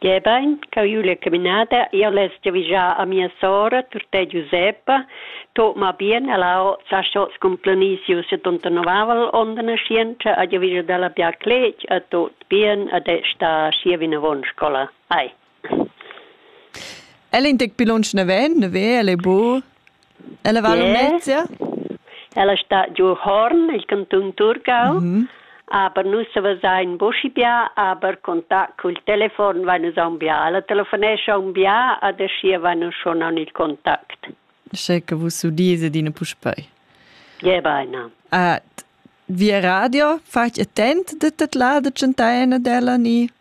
Gebein ch'jeu vul ir caminada jeu less giavischar a mia sora Turté Giuseppa tuorna bien ella ho sa schots cun planisius settantonovavel onn da naschientscha a giavischar dalla bia cletg a tut bien ad è sta schi vinavon scola. Ai. El in tec pli lunsch naven, naver, el ei bu Ella va a Lumnezia? Ella sta giu Horn, il cantun Thurgau. Mm -hmm. Aber nus savesein bucci bia, aber contact cul telefon vai nus aun bia. Ella telefonescha aun bia ad aschia vai nus schon aun il contact. Sche che vus udise dine puspei. Ja, beina. At via radio, fac attent de tat lada centaina della ni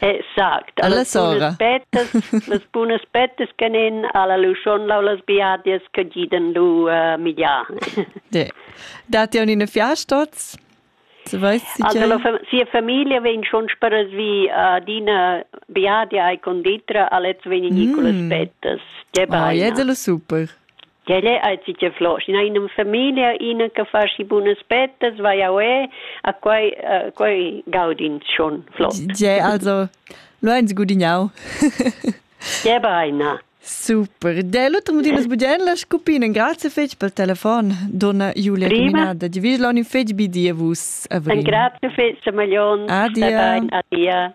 Exact. Alla sora. Pettas, las bunas pettas che nen alla luschon lau las biadias che giden lu uh, migliar. Dat ihr in Fiastos? Se weiß si also, la fam sia famiglia vegn schon speras vi uh, dina biadia e conditra a letz vegn Nicolas mm. Pettas. Oh, jetzt lo super. Quel è aizi che flosch. Ina in familia, ina che fa schi bunas pettas, vai a ue, a quai, uh, quai gaudin schon flott. Ge, also, lo eins gudignau. Ge beina. Super. De l'utram din sbugen la scupina. Grazie fetg pel telefon, donna Julia Caminada. Di vis l'on in fetg bidia vus. Grazie fetg, Malion. Adia. Adia.